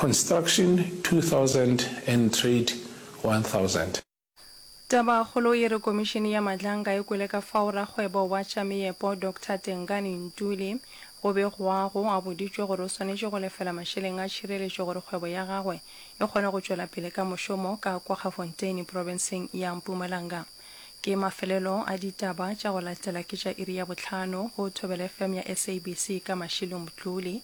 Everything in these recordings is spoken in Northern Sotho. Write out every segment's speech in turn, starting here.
Construction 2000 and Trade 1000. Tabakgolo e re Komišene ya Madlanga e kwele ka fao rakgwebo wa tša meepo Doctor Tengani Ntuli go begwago a boditšwe gore o swanetše go lefela mašeleng a tšhireletšo gore kgwebo ya gagwe e kgone go tšwela pele ka mošomo ka kwa Gafonteine profenseng ya Mpumalanga. Ke mafelelo a ditaba tša go latela ke tša iri ya bohlano go Thobelefm ya SABC ka Mashilo Mtluli.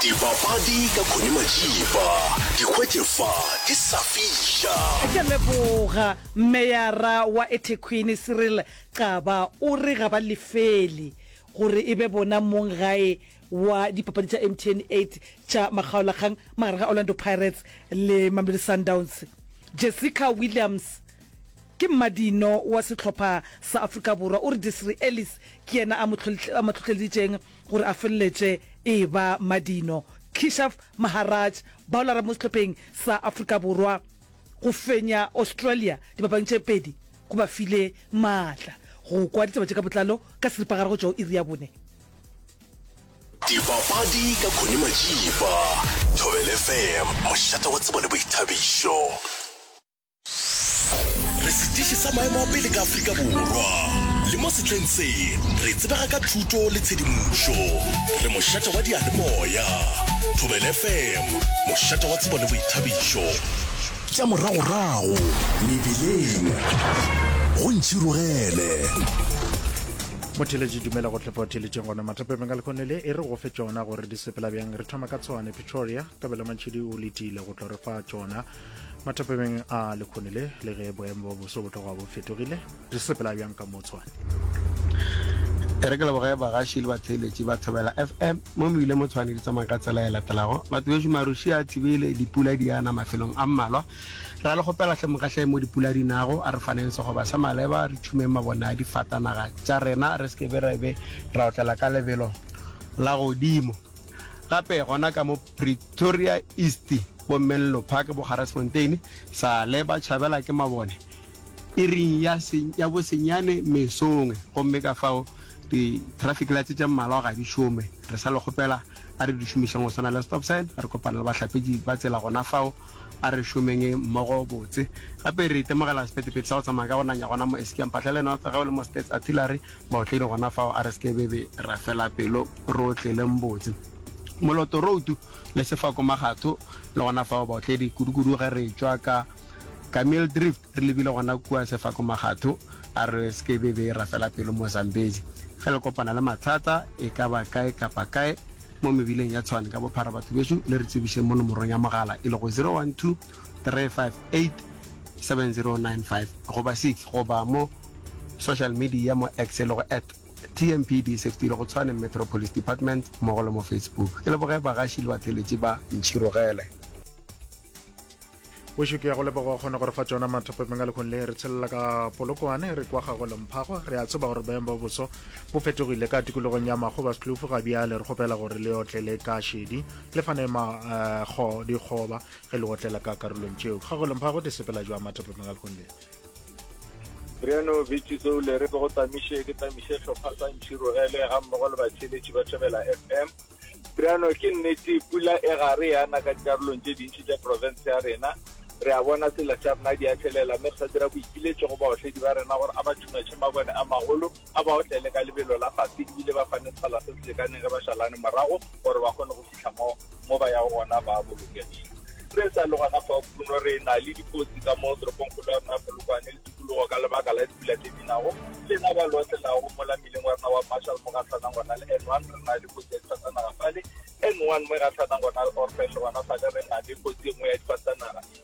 Dipapadi ka Connie Majiba, di hwetše fa di sa fiša. Ke a leboga. Meyara wa eThekwini Cyril Xaba o re ga ba lefele gore e be bona mong gae wa dipapadi tša MTN 8 tša makgaolakgang magareng ga Orlando Pirates le Mamelodi Sundowns. Jessica Williams ke mmadino wa sehlopha sa Afrika Borwa o re Desiree Ellis ke yena a mo hlohleleditšeng gore a feleletše e eba Madino Keshaf Maharaj, baolara mo sehlopheng sa Afrika Borwa, go fenya Australia dipapadi tše pedi go ba file maatla. Go kwa ditaba tše ka botlalo ka seripagare go tšwa go iri ya bone. Dipapadi ka Connie Majiba, Thobela FM, mošate wa tsebo le boithabišo. Re setiši sa maemo a pele ka Afrika Borwa, le mo setleng se re tsebega ka thuto le tshedimošo. Re mošate wa diyalemoya, Thobela FM, mošate wa tsebo le boithabišo. Tša moragorago mebileng, go ntšhirogele. Motheletši dumela go tlepa theletšeng gona mathapemeng ka lekgone le e re go fe tšona gore di sepela bjang re thoma ka tshwane pretoria kabelo mantšhidi o letile go tlo re fa tšona mathapemeng a lekhone le le ge boemo ba boso bo tloga bo fetogile re sepela bjang ka motshwane e re ke leboge bagaši le batheeletši ba thobela fm mo mo ile mo tshwane di tsamaya ka tsela e latelago batho beso maruši a thibile dipula di yana mafelong a mmalwa ra le gopela hle mogahle mo dipula di nago a re faneng segoba sa maleba re thumeng mabone a difatanaga tša rena re seke be ra be ra otlela ka lebelo la godimo gape gona ka mo Pretoria East, bo Menlo Park, bo Garasfontein, Saale, ba tšhabela ke mabone iring ya ya bosenyane mesong, gomme ka fao di traffic lights tše mmalwa ga di šome. Re sa le kgopela a re di šomišeng go swana le stop sign, re kopana le bahlapetši ba tsela gona fao, a re šomeng mmogo botse. Gape re itemogela sephetephete sa go tsamaya ka go nanya gona mo Eskia Mphahlele North, ge o le mo Stats Artillery, Baotledi gona fao a re se ke be be ra fela pelo, re otleleng botse. Moloto, routu, le sefako magatho, le gona fao baotledi, kudukudu ge re tšwa ka, ka Mildrift re lebile gona kua sefako magatho, a re se ke be be ra fela pelo mo Zambezi. Ge le kopana le mathata e ka ba kae kapa kae mo mebileng ya Tshwane ka bophara batho bešo le re tsebišeng mo nomorong ya mogala e lego 012 3587095 goba 6 goba mo social media mo X e lego at TMPD Sefti le go Tshwane Metro Police Department mmogo le mo Facebook. Ke leboge bagaši le batheeletši ba Ntšhirogele. Bošo ke ya go leboga o kgona gore fa tšona mathopepeng a lekgong le re tshelela ka polokwane re kwa gago lemphago re a tseba gore boemo ba boso bo fetogile ka tikologong ya mago ba setlufu ga bjale re kgopela gore le otlele ka šedi le fane makgo eh, dikgoba ge le otlela ka karolong tšeo kgagolong phago te sepela joa matapeng ga lekgong le Riano Bitši seo le re go tamiše ke tamiše hlopha sa Ntšhiro ele ga mmogo le batheletši ba Thobela FM Riano ke nnete pula e gare ya na ka dikarolong tše dintši tša province ya rena re a bona sela sa rena di a thelela mme re sa dira boipiletšo go baotledi ba rena gore a ba thumatšhe mabone a magolo A ba otlele ka lebelo la fase e bile ba fane sekgala se se lekaneng ge ba šalane morago gore ba kgone go fihla mo mo ba yago gona ba bolokegile. Re sa le gona fao, Bruno, re na le dikotsi ka mo toropongkgolo ya rena ya Polokwane le tikologo ka lebaka la dipula tše di nago. Lena ba lo otlelago mola mmileng wa rena wa Marshall mo gahlwanang gona le N1, re na le kotsi ya difatanaga fale N1 mo e gahlwanang gona le Orphan le gona fale re na le kotsi e nngwe ya difatanaga.